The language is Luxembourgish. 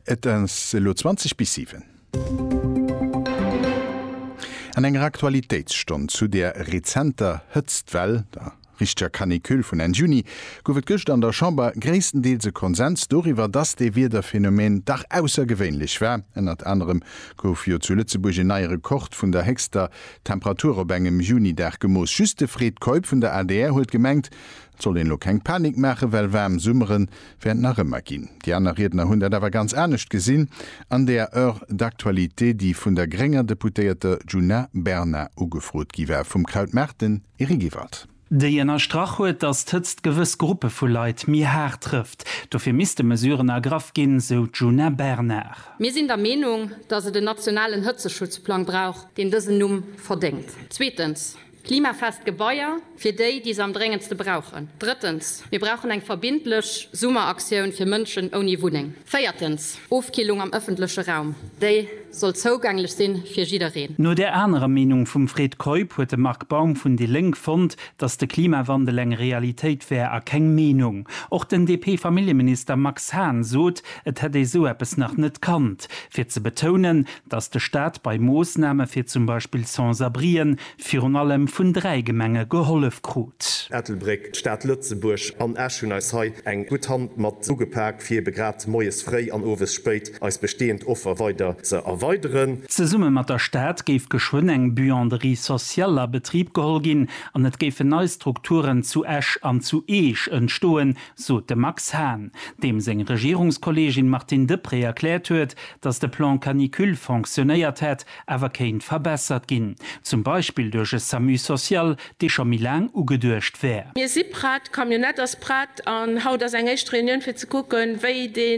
Et ass elo 20 bis 7. An enger Aktualitéitsstonn zu der rezenter Hëtztwell, der richteger Canicule vun Enn Juni, gouf et gëschter an der Chamber gréisstendeels e Konsens doriwwer, dass dee Wiederphänomen dach aussergewéinlech war. Ënnert anerem gouf jo zu Lëtzebuerg en neie Rekord vun der héchster Temperatur op engem Junidag gemooss. Just de Fred Keup vun der adr huet gemengt, Et soll een elo keng Panik maachen, well waarm Summere wäert et nach ëmmer ginn. Déi aner Riedner hunn dat awer ganz anescht gesinn an der Heure d'actualité, déi vun der grénger Deputéierter Djuna Bernard ugefrot gi war. Vum Kraut Maarten, Eric Ewald. Déi ënnerstrach huet, datt d'Hëtzt gewëss Gruppe vu Leit méi haart trëfft. Dofir misste Mesuren ergraff ginn, sou d'Djuna Bernard. Mir sinn der Meenung, datt et en nationalen Hëtzeschutzplang brauch, deen dësen Numm verdéngt. Zweetens. Klimafest Gebaier fir déi, déi se am dréngendste brauchen. Drëttens, mir brauchen eng verbindlech Summeraktioun fir Mënschen ouni Wunneng. Véiertens, Ofkillung am ëffentleche Raum, déi soll zougänglech sinn fir jiddereen. No där anerer Meenung vum Fred Keup huet de Marc Baum vun déi Lénk fonnt, datt de Klimawandel eng Realitéit wär a keng Meenung. Och den DP-Familljeminister Max Hahn sot, et hätt ee sou eppes nach net kannt, fir ze betounen, dass de Staat bei Moossname fir zum Beispill Sans-abrien virun allem vun dräi Gemenge gehollef krut. Ettelbréck, d'Stad Lëtzebuerg an Esch hunn eis hei eng gutt Hand mat ugepak, fir ebe grad moies fréi an owes spéit eis bestehend Offer weider ze erweideren. Zesumme mat der Stad géif geschwënn eng Buanderie sociale a Betrib geholl ginn an et géifen nei Strukturen zu Esch an zu Eech entstoen, sot de Max Hahn, deem seng Regierungskolleegin Martine Deprez erkläert huet, datt de Plan canicule fonctionnéiert hätt, awer kéint verbessert ginn, zum Beispill duerch e Samu social, dee scho méi laang ugeduecht wär. Mir si prett, d'Camionnette ass prett an haut ass eng éischt Reunioun fir ze kucken, wéi dee.